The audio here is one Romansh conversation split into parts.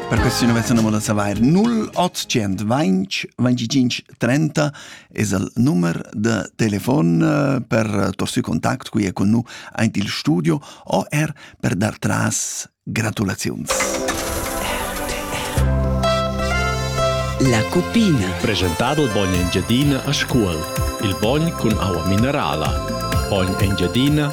Per questo non avessero modo sapere 0820 25 30 es il numero de telefon eh, per torsi contact qui è con noi aint il studio o er per dar tras gratulazions. La cupina. Presentato il bogn Engiadina a scuola. Il bogn con aua minerala. Bogn Engiadina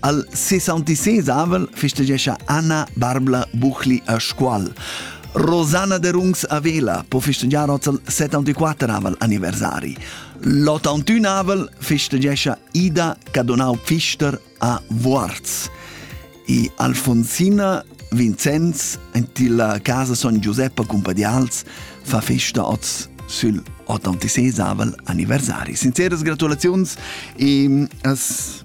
Al 66 avel festegescha Anna Barbla Buchli a Scuol. Rosanna de Rungs a Vela po festegiar oz al 74 avel anniversari. L'81 avel festegescha Ida Cadonau Pfister a Vuorz. I Alfonsina Vincenz en la casa Son Giuseppe Cumpadials fa festa oz sul 86 avel anniversari. Sinceras gratulaziuns e as